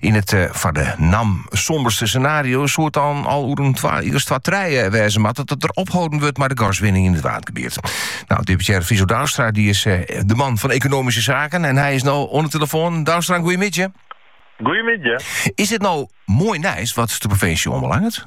Yn it eh, foar de NAM, somberste senario soe it dan al oer in jier as twa trije eh, wêze moatte dat der opholden wurdt mei de gaswinning yn it Waadgebiet. Nou, deputearre Friso Douwstra dy is eh, de man fan Ekonomyske Saken en hy is nou oan de telefoan. Douwstra, goeiemiddei. Goeiemiddei. Is dit nou moai nijs wat de provinsje oanbelanget?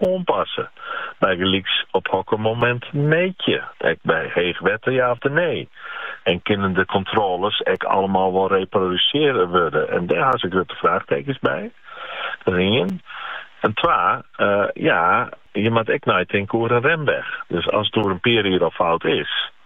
oanpasse, bygelyks op hokker momint mjit je, ek by heech wetter ja of nee, en kinne de kontrôles ek allemaal wol reprodusearre wurde, en dêr ha se grutte fraachtekens by. Dat is ien. En twa, ja, je moat ek neitinke oer in remweg. Dus as it oer in pear jier al fout is,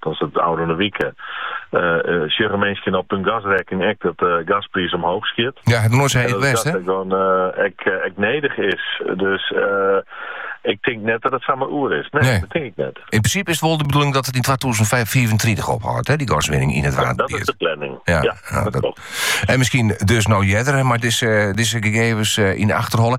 Dat is it. Ôfrûne wiken sjogge minsken op hun gasrekkening ek dat de gaspriis omhoog skiet. Ja, het noait sy it west, hè? Dat ek, ek nedich is. Dus ik tink net dat het samar oer is. Nee, nee, dat tink ik net. Yn prinsipe is it wol de bedoeling dat it yn 2035 ophâldt, hè, dy gaswinning yn it Waad. Dat is de planning. Ja, ja, ja dat, klopt. En miskien dus nou earder, mei dizze, dizze gegevens eh, yn de achterholle.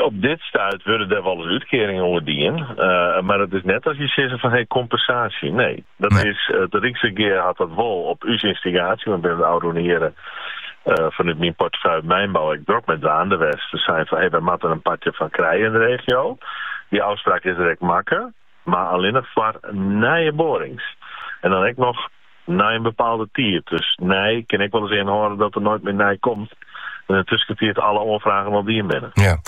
op dit stuit wurde der wol útkearingen oer dien, mar it is net as je sizze fan hey kompensaasje. Nee, dat nee. is it Ryksregear hat dat wol op ús ynstigaasje, want binne de ôfrûne jierren uh, fanút myn portefeuille mynbou ek drok mei dwaande west te sizzen fan, hey, wy moatte in partsje fan krije yn de regio. Dy ôfspraak is der ek makke, mar allinne noch foar nije boarings. En dan ek noch Nei in bepaalde tiid. Dus nij kin ek wolris ynhâlde dat der noait mear nij komt en yn 'e tuskentiid alle oanfragen al dien binne. Ja.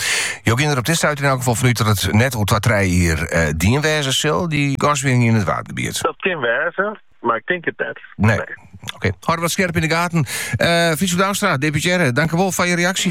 Jo geane der op dit stuit yn elk gefal fanút dat it net oer twa-trije jier dien wêze sil, dy gaswinning yn it Waadgebiet? Dat kin wêze, mar ik tink it net. Nee. Oké. Hâlde dat skerp yn 'e gaten. Friso Douwstra, deputearre, dankewol foar je reaksje.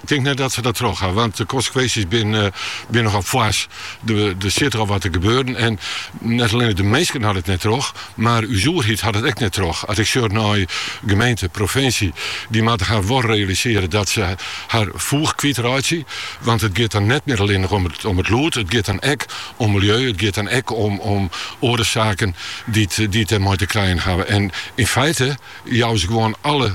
Ik tink net dat se dat troch ha, want de konsekwinsjes binne nochal foars. Der stiet der al wat te gebeuren en net allinnich de minsken hawwe it net troch, mar ús oerheid hat it ek net troch. As ik sjoch nei gemeente, provinsje, dy moatte har wol realisearje dat se har foech kwyt reitsje, want it giet dan net mear allinnich om it lûd, it giet dan ek om miljeu, it giet dan ek om oare saken dy't dêrmei te krijen hawwe. En yn feite jouwe se gewoan alle